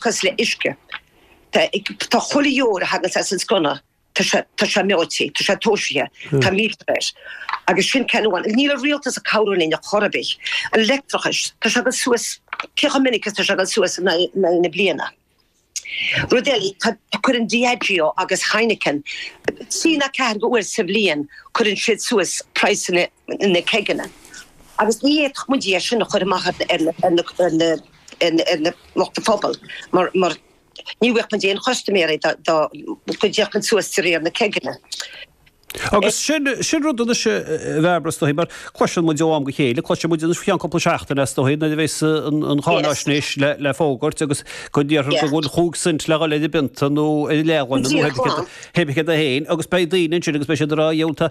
cosúil le uisce. Tá chuile dheoir a thaganns as an sconna, tá sé meáite, tá sé tomhaiste, tá meter air. Agus sin ceann amháin. Níl an rialtas ag cabhrú linn ar chor ar bith. An leictreachas, tá sé ag dul suas, cé chomh minic is atá sé ag dul suas in aghaidh na bliana. Rud eile, cuireann Diageo agus Heineken, trí ná ceathair uair sa bhliain, cuireann siad suas praghsanna na ceigeanna. Agus ní fhéadfadh muid é sin a chur amach ar na. ar na lucht pobail mar ní bhfaigheadh muid aon chustaiméirí dá gcuirfeadh muid suas de réir na ceigeanna. Agus sin rud anois a Bhairbre is dóichí mar cloiseann muid ó am go chéile, cloiseann muid anois faoi cheann cúpla seachtaine is dóichí nuair a bhéas an cháinaisnéis le fógairt agus go ndéarfar go bhfuil chúig cent le dhul ar an bpionta nó ar an leathghloine nó pé ar bith céard é féin, agus beidh daoine ansin agus beidh siad ag rá, 'Diabhal, tá.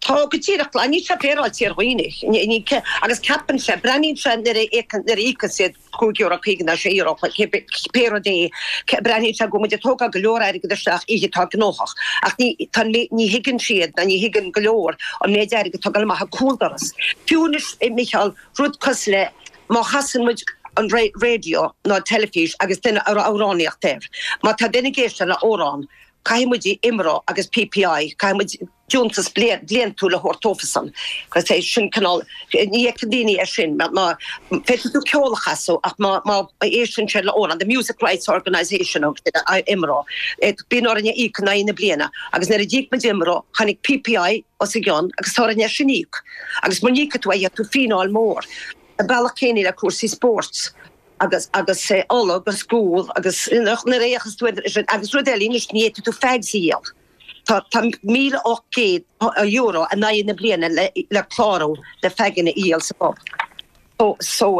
Tá go díreach, níl sé féaráilte ar dhaoine agus ceapann sé, breathnaíonn sé nuair a íocann siad cúig euro, caoga ná sé euro pé rud é, breathnaíonn sé go bhfuil muid ag tógáil go leor airgead isteach, oíche atá gnóthach, ach ní, tá, ní thuigeann siad ná ní thuigeann go leor an méid airgead atá ag dul amach an cúldoras. Fiú anois a Micheál, rud cosúil le má chasann muid an raidió nó an teilifís agus duine ag amhránaíocht air, má tá duine ag éisteacht le amhrán, Caithfidh muid IMRO agus PPI, caithfidh muid deontas bliantúil a thabhairt dóibhsan. Sin cineál, ní fheiceann daoine é sin. Féadfaidh tú ceol a chasadh ach má éisteann siad le amhrán, the Music Rights Organisation a thug siad ar IMRO. Bíonn orainn a íoc in aghaidh na bliana agus nuair a d'íoc muid IMRO, tháinig PPI os a gcionn agus tá orainn é sin a íoc. Agus mura n-íocfaidh tú é, gheobhaidh tú fíneáil mhór. An bealach céanna le cúrsaí spóirt. agus agus é ola agus gual agus nuair a fhéachas tú ar sin agus rud eile anois ní fhéadfaidh tú fags a dhíol tá tá míle ocht gcéad euro in aghaidh na bliana le le clárú le faganna a dhíol sa pub so so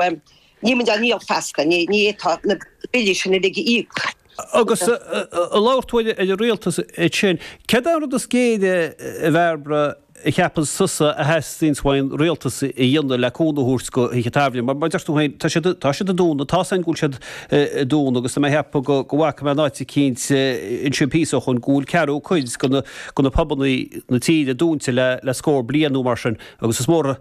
ní muid a níl sé éasca ní ní tá na billí sin uilig a íoc Agus ag labhairt ar an rialtas ansin, céard an rud is géire a Bhairbre a cheapann tusa a theastaíonns ón rialtas a dhéanamh le cúnamh a thabhairt do thithe tábhairne? Mar mar a deir tú féin, tá siad, tá siad ag dúnadh, tá a fhios againn go bhfuil siad ag dúnadh, agus tá mé a cheapadh go go bhfaca mé in áit eicínt ansin píosa ó shoin go bhfuil ceathrú cuid de na pubanna na tíre dúnta le le scór bliain nó mar sin agus is mór a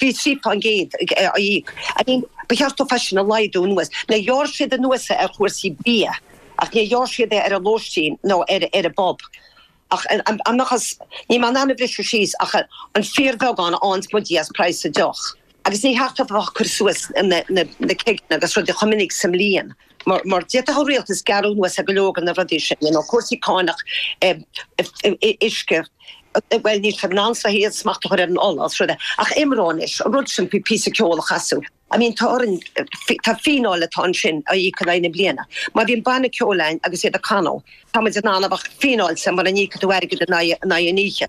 Bhí 3% ag aghaidh. I mean, ba cheart dóibh é sin a laghdú anuas. Now, ghearr siad anuas é ar chúrsaí bia, ach níor ghearr siad é ar an lóistín nó ar an bpub. Ach dá mbeadh, ní mé in ann a bhriseadh síos ach an fíorbheagán ann is mo Dhia as praghas deoch. Agus níor cheart dóibh a bheith ag cur suas na ceigeanna agus rudaí chomh minic sa mbliain. mar d'fhéadfadh an rialtas gearradh anuas ar go leor de na rudaí sin, you know, cúrsaí cánach, uisce, bhuel, níl siad in ann is dóigh smacht a chur ar an ola agus rudaí, ach IMRO anois, rud simplí, píosa ceoil a chasadh. I mean, tá orainn, tá fíneáil atá ansin a íoc in aghaidh na bliana. Má bhíonn banna ceoil againn agus iad ag canadh, tá muid in ann a bheith fíneáilte mura n-íocann tú airgead in aghaidh an oíche.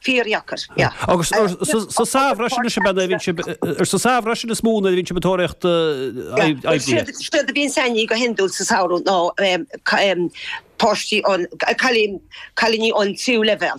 Fíordheacair, yeah. Agus sa samhradh freisin is ea a bhíonn sibh, sa samhradh freisin is mó a bhíonn sibh ag tóraíocht oibre. Siad a bhíonn anseo againn go hiondúil sa samhradh ná páistí, cailíní ón tríú leibhéal.